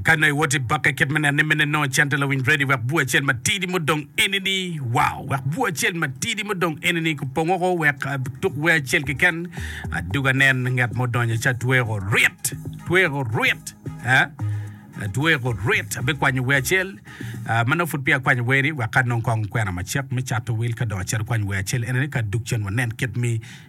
Kadi nongo iwot i bokke kit me neno ni mene nongo cente lawiny Brady wek bur acel matidi mudong enini, wow, wek bur acel matidi mudong enini kupong oko wek ah, tuk wer acel keken adug anen ngat mo donyo ca tweko rit, tweko rit, eh? tweko rit abikwanyo wer acel ah, ma nongo pud peya akwanyo weri wek ka nongo kong kwena macek me cato wil ka dong acito kwanyo wer acel enini ka dug cen wanen kit mi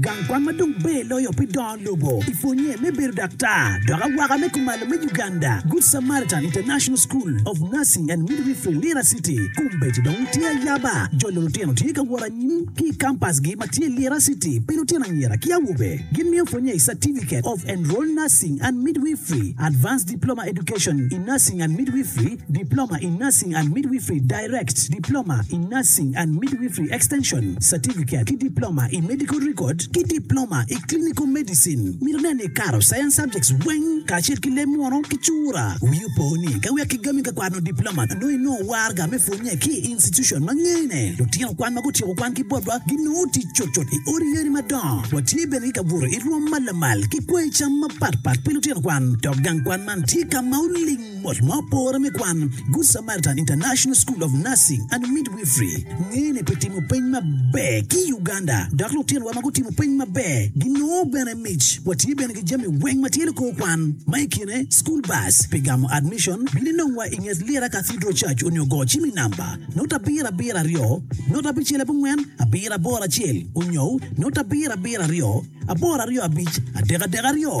Gang kwan ma dong ber loyo pi dongo lobo i pwonnye me bedo daktar dok awaka me kumalo me Uganda, Good Samaritan International School of Nursing and Midwifery, Lira City. Kombeddi dong tye ayaba, jolo lutino tye ka wot anyim ki i kampasgi ma tye Lira City pi lutino anyira ki awobe. Gimiyo pwonnye i Certificate of Enrolled Nursing and Midwifery, Advanced Diploma Education in Nursing and Midwifery, Diploma in Nursing and Midwifery, Direct, Diploma in Nursing and Midwifery Extension, Certificate, ki Diploma i Medical Record ki Diploma i Clinical Medicine. Myero nen ni ikato Science Subjects weng kacel ki leb munu ki cura. Wii opo ni ka wek kigami ka kwano Diploma, nongo inongo warga me pwonye ki i institution ma ngene. Lutino kwan ma gutyeko kwan ki botwa ginongo tic cutcut i odi yeni madongo. Watye bene ki kabuto i rwom ma lamal ki kwango cam mapatpat pi lutino kwan, dok gang kwan man tye ka ma oling. Bot ma opore me kwan, Good Samaritan International School of Nursing and Midwifery ngene pi timo peny maber ki i Uganda, dok lutinowa ma gutimo peny maber ginongo bene mic. Watye bene ki jami weng ma tye lukor kwan, ma i kine school bus pi gamo admission, bino inongwa i nget Lira Cathedral Church onyo go cim i namba note abiro abiro aryo note abicel abongwen abiro aboro acel onyo note abiro abiro aryo aboro aryo abic adek adek aryo.